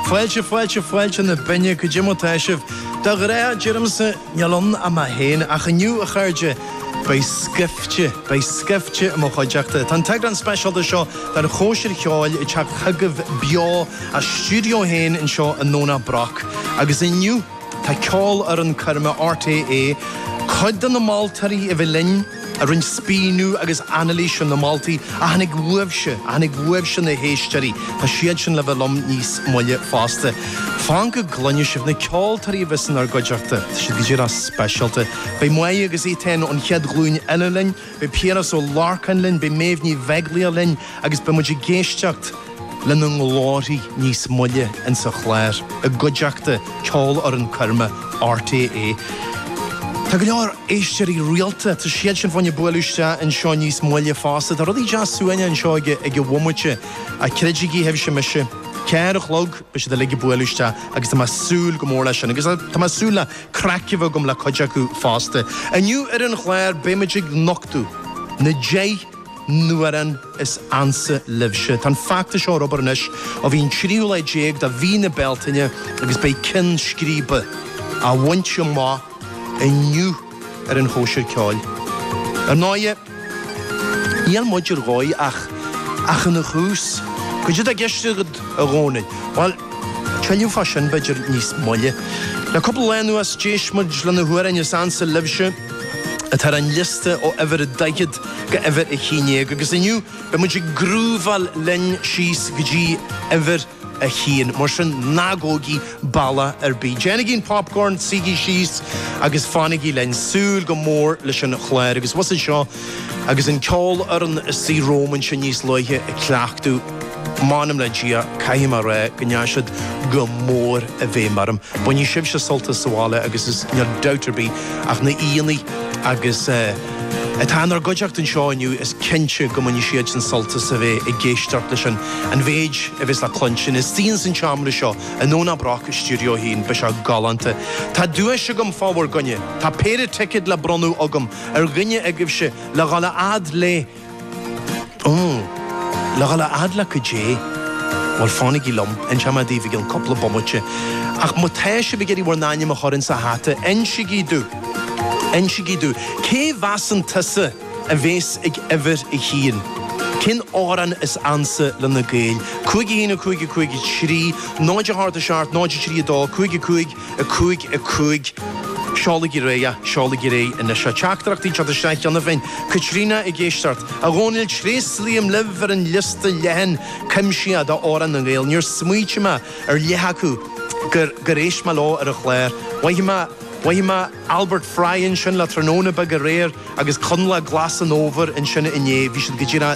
Fáilte, fáilte, fáilte na binne, cad é mar tá sibh. De ghnáth deirimse níl ann ach mé féin, ach inniu, a chairde, beidh scaifte, beidh scaifte i mo chuideachta. Tá an t-eagrán speisialta seo den Chóisir Cheoil ag teacht chugaibh beo as stiúideo 1 anseo i nDomhnach Broc, agus inniu, Tá ceolfhoireann coirme RTÉ, cuid de na moltóirí a bhí linn, a rinn spíonadh agus anailís ar na moltaí a tháinig uaibhse, a tháinig uaibhse na héisteoirí, tá siad sin le bheith liom níos moille fosta. Fan go gcluine sibh na ceoltóirí a bheas inár gcuideachta, tá siad go díreach speisialta. Beidh Máire agus Étáin ón chéad ghlúin eile linn, Beidh Piaras Ó Lorcáin linn, beidh Méabh Ní Bheaglaoich linn agus beidh muid ag éisteacht lena nglórthaí níos moille ins an chlár i gcuideachta Ceolfhoireann Coirme RTÉ. Tá go leor éisteoirí rialta, tá siad sin féin ag bualadh isteach anseo níos moille fosta. Tá rudaí deas suaimhneach anseo ag a bhomaite ach creidigí sibhse mise, ceathair a chlog beidh siad uilig ag bualadh isteach agus tá mé ag súil go mór leis sin agus tá mé ag súil le craic a bheith agam le cuid acu fosta. Inniu ar an gclár beimid ag nochtadh na deich n-amhrán is ansa libhse. Tá an feachtas seo ar obair anois ó bhí an tríú lá déag de mhí na Bealtaine agus beidh ceann scríbe á bhaint amach inniu ar an chóisir ceoil. Ar ndóigh, Níl muid ar dhóigh ach ach ina thús. Cad é atá i gceist agat, a Dhónaill? Bhuel, tuilleadh fá sin, b'fhéidir, níos moille. Le cúpla lá anuas, d'éist muid le na hamhráin is ansa libhse atá ar an liosta ó uimhir a daichead go uimhir a haon déag agus inniu beidh muid ag grúváil linn síos go dtí uimhir a haon, mar sin, ná gabhaigí bealach ar bith. Déanaigí an popcorn, suígí síos agus fanaigí linn. Súil go mór leis an chlár agus mé abhus anseo agus an cheolfhoireann ina suí romham ansin níos luaithe ag cleachtadh. M'anam le Dia, caithfidh mé a rá go ndeachaigh siad go mór i bhfeidhm orm. Bainfidh sibhse sult as sa bhaile agus is níl dabht ar bith ach na haíonna agus eh, atá inár gcuideachta anseo inniu, is cinnte go mbainfidh siadsan sult as a bheith ag éisteacht leis an an mhéid a bheas le cluinstin. Istigh ins an tseomra seo i nDomhnach Broc i stiúideo 1, beidh sé galánta. Tá duais agam fá bhur gcoinne. Tá péire ticead le bronnadh agam ar dhuine agaibhse le dhul a fhad le. Umm. Le dhul a fhad le cad é. Bhuel, fanaigí liom. Inseoidh mé daoibh i gceann cúpla bomaite. Ach má tá sibh ag iarraidh bhur n-ainm a chur ins a' hata, insigí domh, insigí domh, cé mheasann tusa a bhéas ag uimhir a haon? Cén amhrán is ansa le na Gaeil? Cúig a haon a cúig a cúig a trí, 0 a hocht a seacht, 0 a trí a dó, cúig a cúig. 5 5 Seolaigí ar aghaidh, seolaigí ar aghaidh anois a. Teachtaireachtaí teacht isteach cheana féin Caitríona ag éisteacht ort, a Dhónaill Tréaslaím libh ar an liosta leathan cuimsitheach de amhráin na nGael Níor smaoitigh mé ar leath acu gur gur éist mé leo ar an chlár Mhothaigh mé, mhothaigh mé Albert Fry ansin le tráthnóna beag aréir agus Coinleach Glas an Fhómhair ansin inné Bhí siad go dtí an